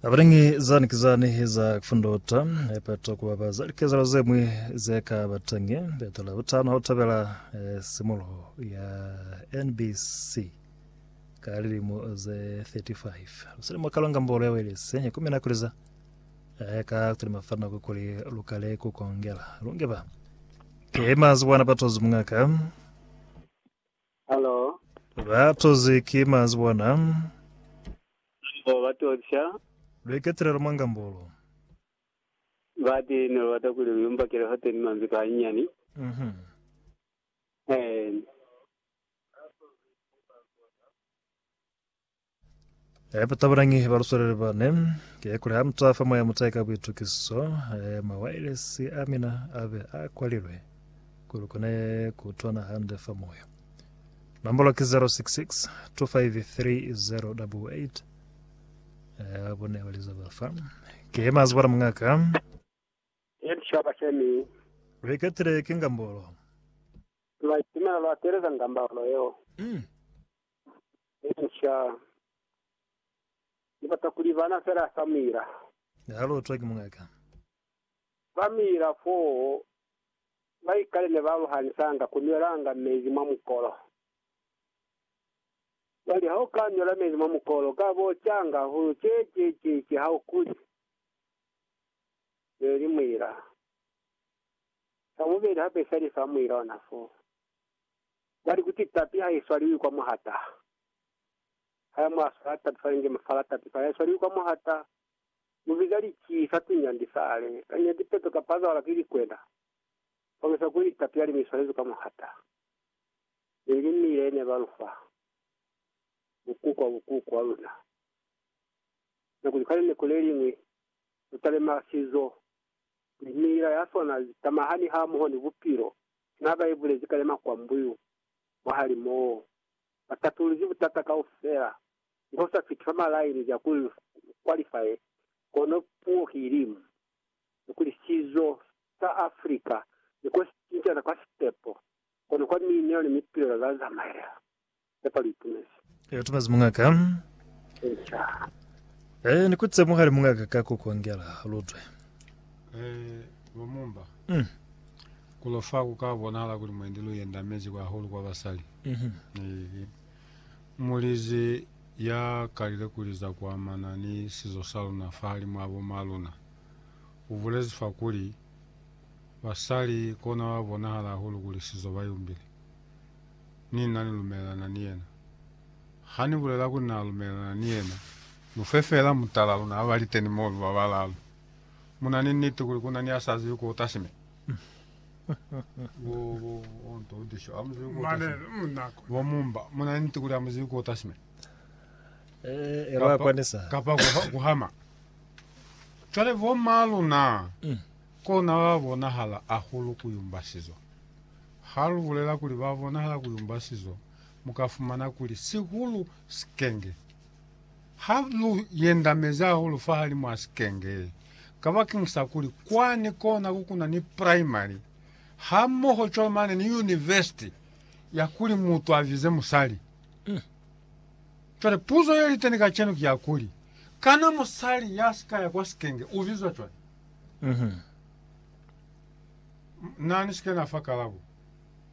Abanengi zani ki zani za kufundota epato kuba ba za likezelo ze mwi ze ka batangi beto la butano ha utabela eh, simuluho ya NBC ka lilimo ze 35 luselimo kalonga mbolo ya welesi ya kumina kuliza eh, ka kutuli mafana kukuli lukale kukongela lungeba ke mazi bwana patozi mungaka Halo. Ba tozi ki manzi bona. Bo ba to ca. Lu iketelelo mwa ngambolo. Bati ne lu bata kuli lu yumbakele hoteni manzi ka hayinyani. Mhm. Eena. Eh, batabulangi ba luswelele ba ne, ke kuli ha mu tswa fa moya mu tsaye ka buitukiso, eh, mawailesi a mina a be a kwalilwe ku lu kone ku utwana hande fa moya. Nombolo ki 066 253 eh, ba bone ba liza ba fa. Ke ye mazi bona mungaka. Ye lishwaba shemi. Lu iketile ki ngambolo. Lwa itumela lwa teleza ngambolo yeo. Mm. Elisha ni bata kuli bana fela sa Mira. Ne a lotwa ki muñ'a ka. Ba Mira fo ba ikale ne ba aluhanisanga ku nwelanga mezi mwa mukolo. Bali, Ha u ka nwela mezi mwa mukolo, u ka bo canga hahulu. Ce, ce, ce, ce, ha u kuli. Ne li Mira. Sa bubeli hape isali sa Mira ona foo. Bali kuti tapi ha i swaliwi kwa muhata, ha ya mwa swala tapi fa linge mafala tapi fa ya swaliwi kwa muhata, mu biza lici sa tunyandi sale, ka nyi ya tipeto kapa za wala ki likwena, fangisa kuli ni tapi ya limi i swalezwi kwa muhata. Mi lilimi le ne ba lu fa bukuku kwa bukuku wa luna, na kuli ka lineko le liñwi lu talema sizo, kuli miila ya sona zi tamahani hamoho ni bupilo Sina ba ibulezi kale makwambuyu mwahalimoo, ba tatuluzi butata kaufela, mi ho sa fiti fa malaini za ku kwalifaye, kono puo ki ilimu, ni kuli sizo sa Africa ne ko si cincana kwa sitepo, kono kwa miinelo ni mipilelo za zamaela. Haiba lu itumezi. Lu itumezi muñ'a ka. Eca. Ee, ni kutise muhali muñ'a ka ka ku kongela. Lu twe. Ee, bo mumba. Kono fa ku ka bonahala kuli mwendi lu yendamezi kwa hahulu kwa basali. Ee, mulizi ya kalile kuli za ku amana ni sizo sa luna fahalimw'a bo m'a luna, u bulezi fa kuli, Basali kona ba bonahala hahulu kuli sizo ba yumbile. ni na ni lumelelana ni yena. Ha ni bulela kuli na lumelelana ni yena, lu fe feela mutala luna ba liteni moo lu ba balaalu. Mu na ni niti kuli ku na ni ya sa zibi ku uta sime. Bo Mumba, mu na ni niti kuli ha mu zibi ku uta sime. Kapa ku hama. Cwale bo maa luna, kona ba bonahala ahulu ku yumba sizo. Ha lu bulela kuli ba bonahala ku yumba sizo, mu ka fumana kuli sihulu sikenge ha lu yendamezi hahulu fahalimw'a sikenge, kabakeng sa kuli kwani kona ku kuna ni primary hamoho cwalo mane ni yunivesiti ya kuli mutu a vize musali. Cwale puzo ye li teni kacenu ki ya kuli, Kana musali ya si ka ya kwa sikenge u bizwa cwale? Na ni si ke na fa kalabo.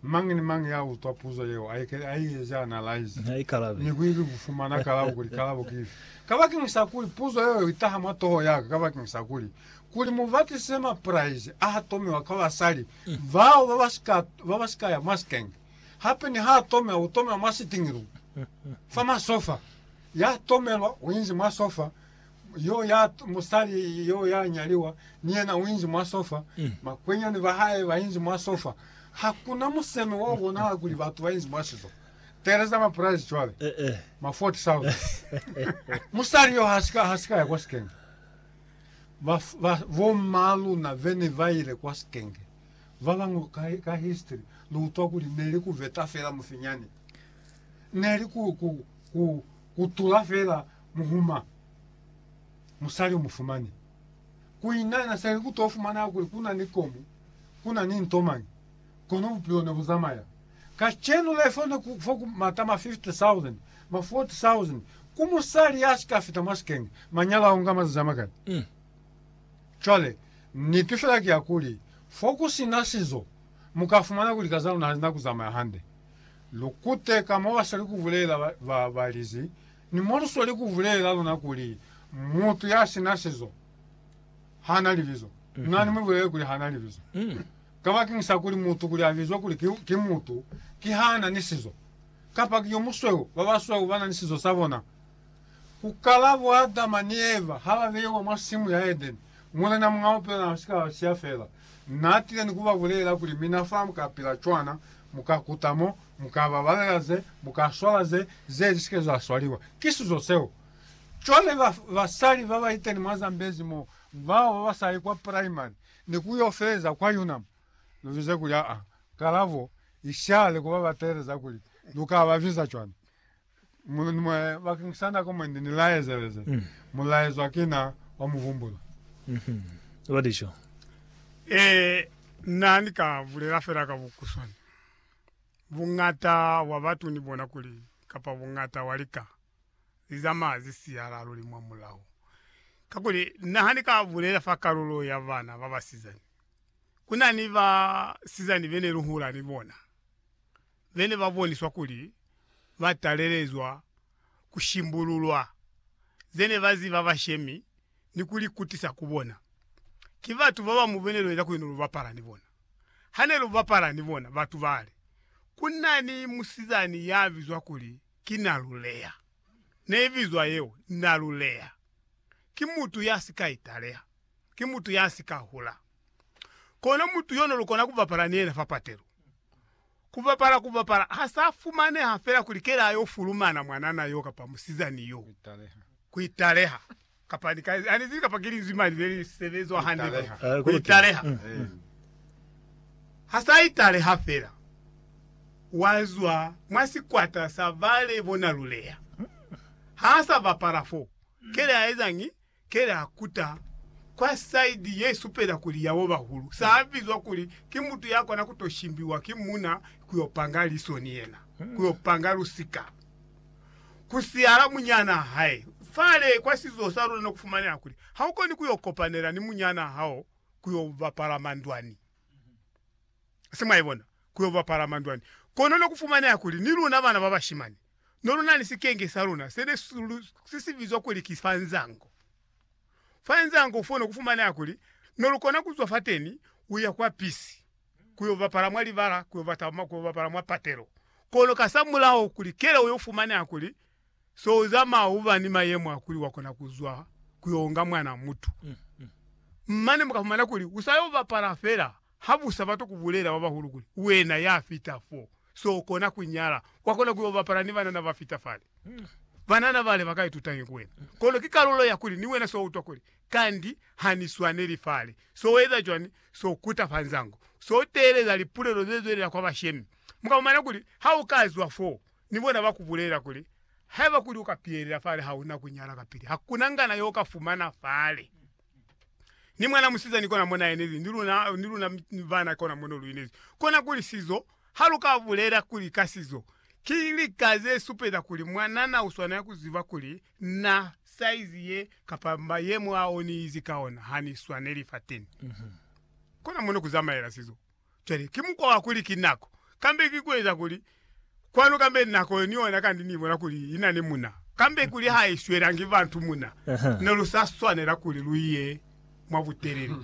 Mañi ni mañi ya utwa puzo yeo, a ikele a i eze analaize, ni ku ili ku fumana kalabo kuli kalabo ki ifi. Kabakeñi sa kuli puzo yeo i taha mwa toho ya ka, kabakeñi sa kuli, kuli mu batisize mapraize a ha tomiwa kwa basali bao ba ba si ka, ba ba si ka ya mwa sikenge. Hape ni ha a tomiwa, u tomelwa mwa sitingi lu, fa masofa. Ya tomelwa, u inzi mwa sofa. yo ya musali yo ya nyaliwa ni yena u inzi mwa sofa mm. makwenyani ba hae ba inzi mwa sofa hakuna museme wa bonala kuli batu ba inzi mwa sizo tereza ma price cwale eh, eh. ma 40000 musali yo hasika hasika ya kwa sikenge ba, ba bomma luna vene ba ile kwa sikenge ba bangwe ka, ka history lu utwa kuli ne li ku veta fela mufinyane ne li ku, ku, ku Kutula fela muhuma musali umufumani. Kuinana seli kuto fumana kuli kuna ni komu, kuna ni nto mañi, kono bupilo ne buzamaya. Kacenu le fo ne ku fo ku mata ma 50,000, ma 40,000 ku musali ya sika fita mwa sikenge. Manyalo ao nga mazazi amakani. Cwale, niti fela ki ya kuli, fo kusina sizo, muka fumana kuli kazaluna hazina kuzamaya hande. Lukute ka mabasweli kubulela ba balizi, ni molusweli kubulela luna kuli, Mutu ya sina sizo hana libizo. Na ni mubulele kuli hana libizo. Kabakeng sa kuli mutu kuli abizwe kuli ki, ki mutu, ki hana ni sizo. Kapa ki yo musweu, babasweu bana ni sizo sabona. Ku kala bo Adama ni Eva ha ba beiwa mwa simu ya Edeni, Mulena Mungao Pela na si ka ba siya fela. Na tile ni ku ba bulelela kuli, Mina fa mu ka pila cwana, mu ka kuta mo, mu ka babalela ze, mu ka swala ze, ze li si ke za swaliwa. Ki suzo seo. Cwale ba, basali ba ba iteni mwa Zambezi mo, bao ba ba sa yi kwa primary, ni ku yo feleza kwa UNAM, lu bize kuli, aa, kalabo i shale ku ba ba teeleza kuli lu ka ba biza cwana. Bakeng sa nako mwendi ni la ezeleza mulaezwa ki na wa mu humbula. Ba li co. Ee, na ni ka bulela fela ka bukuswani. Buñata bwa batu ni bona kuli, kapa buñata wa lika, li zamaya zi siyala luli mwa mulaho. Kakuli, na ha ni ka bulela fa kalulo ya bana ba basizani, ku na ni basizani be ne lu hula ni bona. be ne ba boniswa kuli ba talelezwa ku shimbululwa ze ne ba ziba bashemi ni ku li kutisa ku bona. Ki batu ba ba mubile lweza kuli ne lu bapala ni bona. Ha ne lu bapala ni bona, batu ba li, Ku na ni musizani ya bizwa kuli ki Naluleya. Ne i bizwa yeo Naluleya. Ki mutu ya si ka italeha. Ki mutu ya si ka hula. Kono mutu yo ne lu kona ku bapala ni yena fa patelo. Kubapala kubapala ha sa fumaneha fela kuli kela yo fulumana mwanana yo kapa musizani yo. Kuitaleha. Kapa ni ka, ani zibi kapa ki linzwi mani le li sebezwa hande mwa. Kuitaleha. Eh, kuli ki- Kuitaleha. Mm. Ha sa italeha fela, wa zwa mwa sikwata sa ba le bona luleya. Ha sa bapala fo, kela ya ezañi? Ke la kuta kwa saidi ye supela kuli ya bo bahulu sa bizwa kuli ki mutu ya kona ku to shimbiwa ki muuna ku yo panga liso ni yena, ku yo panga lusika, ku siyala munyanaa hae. Fale kwa sizo sa luna no ku fumaneha kuli ha u koni ku yo kopanela ni munyanaa hao ku yo bapala mandwani. se mwa ibona, ku yo bapala mandwani. Kono ne ku fumaneha kuli ni luna bana ba bashimani no lu na ni sikenge sa luna se ne si si bizwa kuli ki Fanzango. Fanzango fo ne ku fumaneha kuli ne lu kona ku zwa fateni u ya kwa pisi ku yo bapala mwa libala, ku yo bapala mwa patelo. Kono kasamulaho kuli keleo yo fumaneha kuli se u zamaya u ba ni mayemo a kuli wa kona ku zwa ku yo onga mwana mutu. Mane mu ka fumana kuli u sa yo bapala fela. Ha bu sa bata ku bulela ba bahulu kuli, Wena ya fita fo, so u kona ku nyala, wa kona ku yo bapala ni banana ba fita fale. Banana bale ba ka itutañi ku wena? Kono ki kalulo ya kuli ni wena so utwa kuli, Kandi ha ni swaneli fale. So eza cwani? So kuta fa nzango. So teeleza lipulelo ze zwelela kwa bashemi. Mu ka fumana kuli ha u ka zwa fo, ni bona ba ku bulela kuli, Haiba kuli u ka piyelela fale, ha u na ku nyala kapili. Ha ku na ngana yo u ka fumana fale. ni mwana musizani kona mo naenezi ni luna ni luna bana kona mo no luinezi kona kuli sizo ha lu ka bulela kuli ka sizo ki lika ze supeza kuli mwanana u swanela ku ziba kuli na saizi ye kapa mayemo ao ni izi ka ona ha ni swaneli fateni kona mo no ku zamaela sizo Cwale, ki mukwa wa kuli ki nako, kambe ki kueza kuli kwanu, kambe nako yo ni yona, kandi Ni bona kuli ina ni muna, kambe kuli ha i swelangi bantu muna, ne lu sa swanela kuli lu ye mwa butelele.